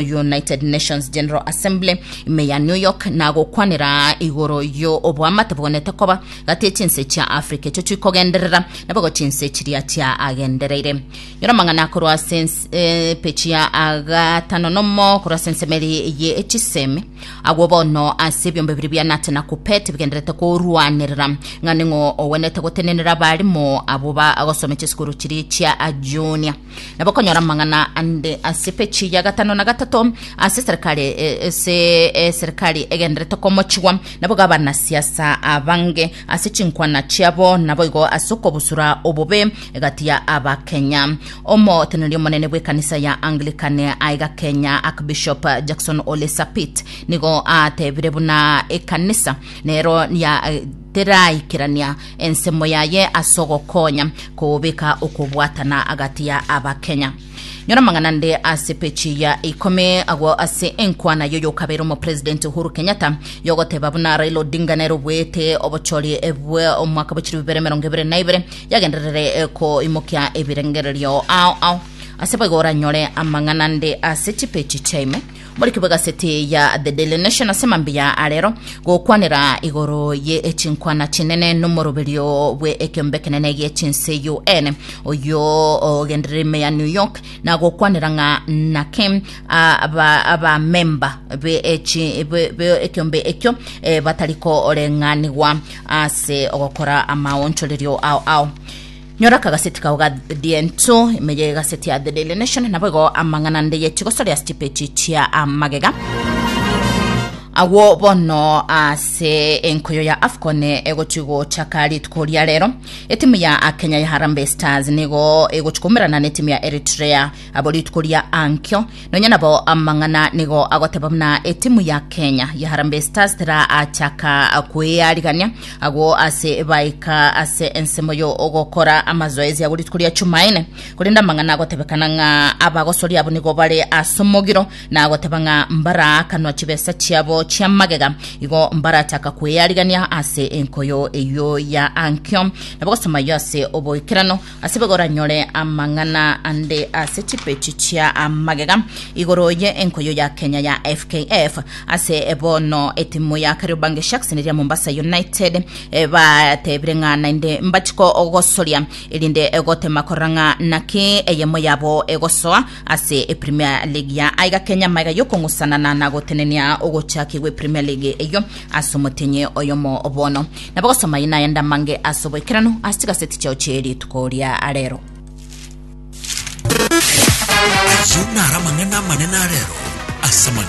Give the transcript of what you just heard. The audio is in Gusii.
United Nations General Assembly ime ya New York nagokwanera igoro yo oboamate bogonyete koba gati chinse chia Africa echo chikogenderera nabogo chinse chiria chia agendereire nyora mang'ana korwa sense eh, pechi ya agatano nomo korwa sensemeri ye echisemi agwo bono ase ebiombe biri bia Nate na Kupet bigenderete korwanerera ng'a ning'o owenete gotenenera abarimo abo ba agosome chisukuru chiri chia junior na bakonyora amang'ana ande ase pechi ya gatano na gatato ase serikali eh, ase eh, serikali egenderete komochigwa nabo gabana siasa abange ase chinkwana chiabo naboigo ase okobusura obobe egati ya abakenya omoteneri omonene bw'ekanisa ya anglican aiga kenya archbishop jackson ole sapit nigo atebire buna ekanisa nero ya teraikerania ensemo yaye ase ogokonya kobeka okobwatana agati ya Abakenya. Nyora amang'ana nde ase pechi ya ikomi agwo ase enkwana yoyokabere omopresident Uhuru Kenyatta yogoteba buna Raila Odinga nere obuete obochori bwe omwaka bochiri bibere emerongo ebere na ibere yagenderere koimokia ebirengererio ao ao ase boigo oranyore amang'ana nde ase chipechi chiaime Muri kebwegaseti ya The Daily Nation ase mambia arero gokwanera igoro ye chinkwana chinene nomoroberio bwe ekeombe ekenene gie chinse UN oyo ogenderera ime ya New York na gokwanera ng'a nake abamemba be ekeombe ekio eh, batari koreng'anigwa ase ogokora amaonchorerio ao ao Nyora akagazeti kao ga The Ento, ime y'egazeti ya The Daily Nation, naboigo amang'ana ndeyeti gosoria ase chipeji chia amagega. agwo bono ase enkoyo ya afcon egochi gochaka rituko ria rero etimu ya kenya ya harambe stars nigo egochi koumerana na etimu ya eritrea Abo rituko ria ankio, nonya nabo amang'ana nigo agoteba buna etimu ya Kenya ya Harambee Stars teraachaka kwearigania agwo ase baika ase ensemo yo ogokora amazoezi agwo rituko ria Chumaine. Korende amang'ana agotebekana ng'a abagosori abo nigo bare ase omogiro na agoteba ng'a mbaraakanwa chibesa chiabo chia magega igo mbarachaka kwearigania ase enkoyo eyio ya ankio. Nabo gosoma ayio ase oboikeranu Asebwe goranyore amang'ana ande ase chipechi chia magega igoro ye enkoyo ya Kenya ya FKF ase bono etimu ya Kariobangi Sharks neria Mombasa United eh, batebire ng'a naende mbachi kogosoria erinde gotema korora ng'a naki eyemo yabo egosoa ase Premier League ya aiga Kenya magega yokong'usanana na gotenenia ogochakigwa Premier League eyio as'omotenyi oyomo bono. Nabo gosoma aya nayande amange as'oboikeranu ase chigaseti chiao chie rituko ria arero. Ayio naro amang'ana amanene arero ase amagena.